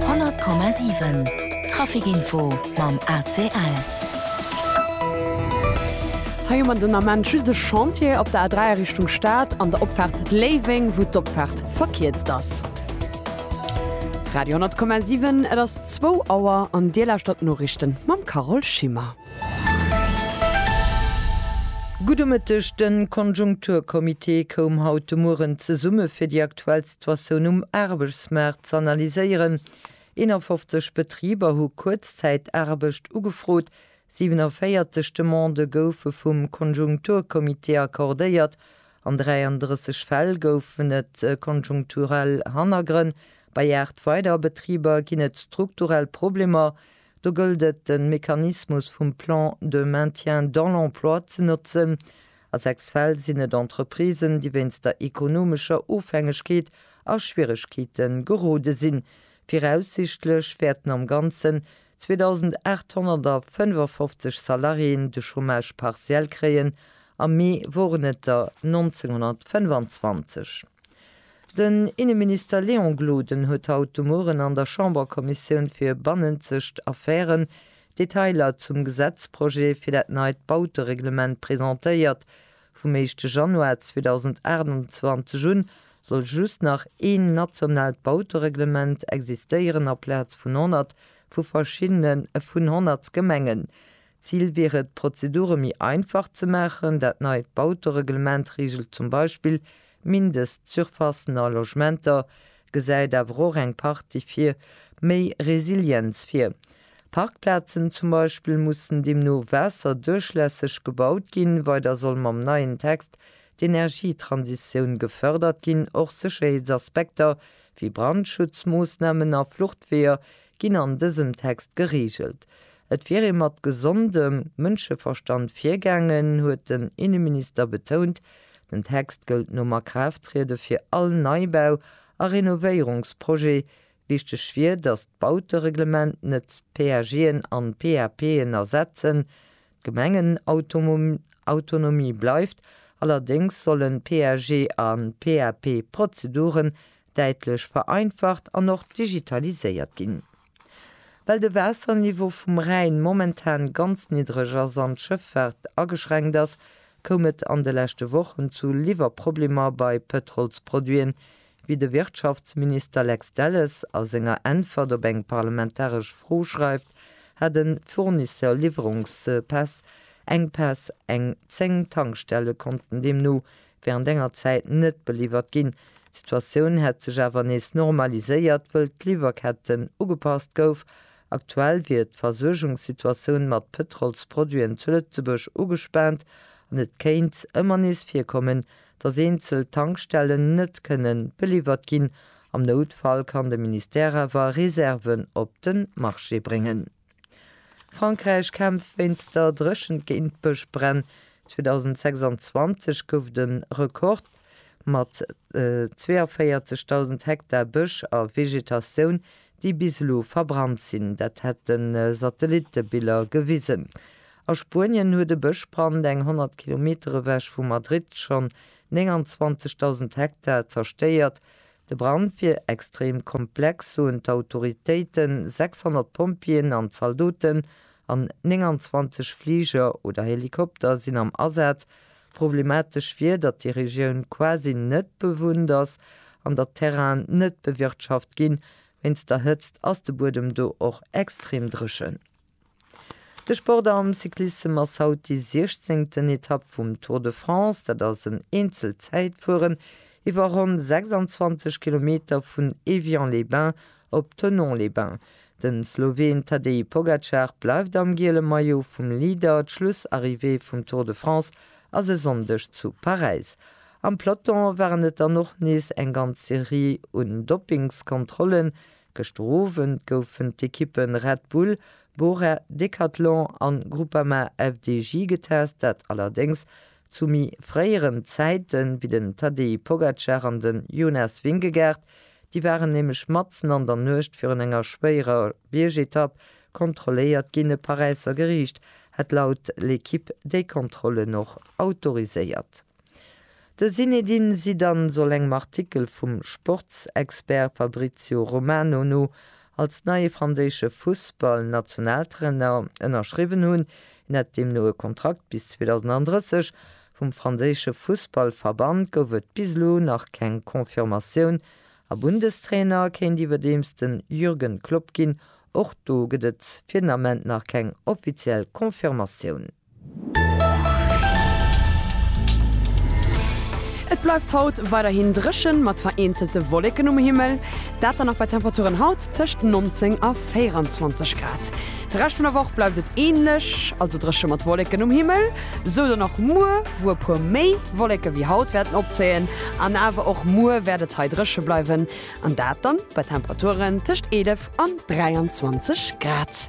100,7 Traficinfo mam ACL. Hei hu mer den Ament just de Chantier op der A3 a Richtung Stad an der Opfaart Léiweng, wou d'Opfaart verkierzt ass. Radio 10,7, Et ass zwou Auer an Dir lauschtert d'Noriichten mam Carole Schimmer. Gudde Mëtteg, De Konjunkturcomité koum haut de Mueren zesumme fir déi aktuellst. D'Situatioun um Aarbechtsmaart z'analyséieren. 51 Betriber hu Kuerzzäitaarbecht ugefrot, 47 Demandë goufe vum Konjunkturcomité accordéiert, an 33 Fäll goufen et konjunkturell Hannergrënn. Bei 8 weider Betriber ginn et strukturell Problemer, do gëllt et de Mechanismus vum Plan de maintien dans l'emploi ze notzen, A sechs Fäll sinn et Entreprisen, déi wéinst der ekonomescher Ofhängegkeet a Schwieregkeete gerode sinn. Viraussichtlech wäerten am Ganzen 2.855 Salariéen de Chômage partiel kréien, am Mee woren et der 1925. Den Inneminister Léon Gloden huet haut de Mueren an der Chamberkommissioun fir bannenzegt Affären D'Detailer zum Gesetzprojet fir dat neit Bautereglement, presentéiert vum éischte Januar 2028 un, soll just nach een nationaalt Bautereglement existéieren aplaz vun 100 vu verschiddene vun 100 Gemengen. Zil wier et, d'Prozedure méi einfach ze maachen. Dat neit Bautereglement reegelt zum Beispill Mindestsurfacen a Logementer, gesäit awer och eng Partie fir méi Resilienz vir. Parkplazen zum Beispill mussen deemno waasserduerchlässeg gebaut ginn. Weider soll mam neien Text d'Energietransitioun gefërdert ginn. Och Sécherheetsaspekter wéi Brandschutzmoossnamen a Fluchtweeër ginn an dësem Text gereegelt. Et wier ee mat gesondem Mënscheverstand virgaangen, huet den Inneminister betount. Den Text gëllt nom Akraafttriede fir all Neibau a Renovéierungsprojet, Wichteg wier, datt d'Bautereglement net d'PAGen an d'PAPen ersetzen. D'Gemengenautonomie bleift, allerdéngs sollen d'PAG a PAP-Prozeduren däitlech vereinfacht an och digitaliséiert ginn. Well de Waasserniveau vum Rhäin momentan ganz niddreg ass an d'Schëffaart ageschränkt ass, koum et an de leschte Wochen zu Liwwerproblemer bei Pëtrolsproduiten, wéi de Wirtschaftsminister Lex Delles a senger Äntwert op eng parlamentaresch Fro schreift, hat e Fournisseur Liwwerungspäss, Enkpäss. Eng 10 Tankstelle konnten deemno wärend enger Zäit net beliwwert ginn. D'Situatioun hätt sech awer nees normaliséiert, wëll d'Liwwerketten ugepasst gouf. Aktuell wier d'Versuergungssituatioun mat Pëtrolsproduiten zu Lëtzebuerg ugespaant an et kéint ëmmer nees virkommen, dass eenzel Tankstellen net kënnen beliwwert ginn. Am Noutfall kann de Ministère awer Reserven op de Marché bréngen. Frankräich kämpft wéinst der Dréchent géint d'Bëschbränn. 2026 gouf de Rekord mat 42.000 Hektar Bësch a Vegetatioun déi bis elo verbrannt sinn, dat hätte Satellittebiller gewisen. A Spuenien huet e Bëschbrand eng 100 Kilometer ewech vu Madrid schonn 29.000 Hektar zerstéiert. De Brand wier extrem komplex, soen d'Autoritéiten. 600 Pompjeeën an Zaldoten an 29 Fliger oder Helikopter sinn am Asaz, Problematesch wier, datt déi Regioun quasi net bewunnt ass an datt d'Terrainen net bewirtschaft ginn. Wéinst der Hëtzt ass de Buedem do och extrem dréchen. De Sport am Cyclissem ass haut déi siechzéngten Etapp vum Tour de France. Dat ass en Eenzelzäitfueren iwwer ronn 26 Kilometer vun Évian-les-Bains Op Thonon-les-Bains. De Sloween Tadej Pogacar bleift am giele Maillot vum Leader. D'Schlussarrivée vum Tour de France ass e Sonndeg zu Paräis. Am Peloton waren et dann och nees eng ganz Serie un Doppingskontrollen. Gëschter Owend goufen d'Ekippe Red Bull, Bora, Decathlon an Groupama-FDJ getest, dat allerdéngs Zu méi fréieren Zäite wéi den Tadej Pogacar an den Jonas Vingegaard, déi waren nämlech matzen an der Nuecht virun enger schwéierer Biergetapp kontrolléiert ginn. E Paräisser Geriicht hätt laut L'Equipe déi Kontrollen och autoriséiert. De Zinedine Zidane soll engem Artikel vum Sportsexpert Fabrizio Romano no als neie franséische Fussballnationaltrainer ënnerschriwwen hunn. Hien hätt deemno e Kontrakt bis 2030. Vum franséische Fussballverband gouf et bis elo nach keng Confirmatioun a Bundestrainer kéint iwwerdeems de Jürgen Klopp ginn. Och do gëtt et fir den Ament nach keng offiziell Confirmatioun. Et bleift haut weiderhin dréchen, mat vereenzelte Wolleken um Himmel, dat dann och bei Temperaturen haut tëscht 19 a 24 Grad. De Rescht vun der Woch bleift et änlech, also dréche mat Wolleken um Himmel, sou dann och muer, wou e puer méi Wolleke wéi haut wäerten opzéien. An awer och muer wäert et hei dréche bleiwen, an dat dann bei Temperaturen tëscht 11 an 23 Grad.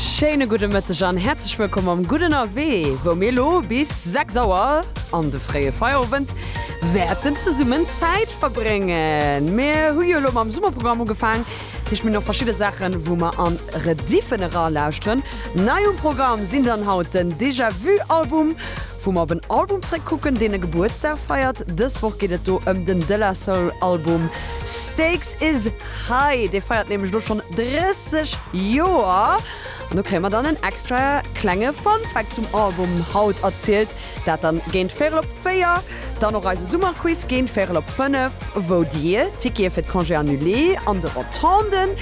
Schéine gudde Mëtteg an häerzlech wëllkomm am Gudden Awee, wou mir elo bis 6 Auer an de fréie Feierowend wäerten zesummen Zäit verbréngen. Mir hu jo elo mam Summerprogramm ugefaang, dat heescht mir hunn och verschidde Saachen, wou mer an Rediffen eralauschteren. Nei um Programm sinn dann haut den Déjà-Vu-Album, Wou mer op en Album zréck kucken, deen e Gebuertsdag feiert. Dës Woch geet et do ëm den De La Soul Album Stakes Is High. Dee feiert nämlech elo schonn 30 Joer. An do kréie mer dann en extra klenge Fun Fact zum Album haut erzielt. Dat dann géint véirel op véier. Dann och eise Summerquiz géint véirel op fënnef, wou dir Tickete fir d'Congé Annulé an de Rotonden.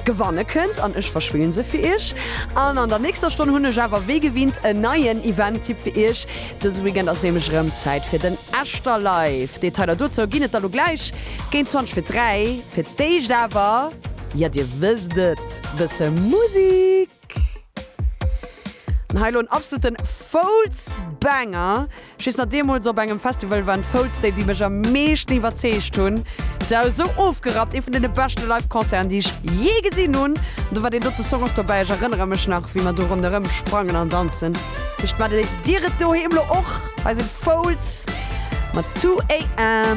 gewanne kënnt an ech verschwillen se fir iech an an der nächster Stonn hunn ech awer wéi gewinnt en neien Event-Tipp fir iech. Dëse Weekend ass nämlech erëm Zäit fir den Echter Live. Detailer dozou ginn et da lo gläich géint 20 fir 3. Fir d'éischt awer, jo dir wësst et, bësse Musik. Hei lo en absoluten Foulz-Banger. Just nach deemools op engem Festival waren d'Foulz déi, déi mech am meeschten iwwerzeegt hunn. D'Sau esou ofgerappt, ee vun deene beschte Live-Concerten, déi ech jee gesinn hunn. An do war deen dote Song och dobäi. Ech erënnere mech nach, wéi mer do ronderëm sprangen an danzen. Vläicht maacht Dir et doheem lo och. Hei sinn d'Foulz mat 2 AM.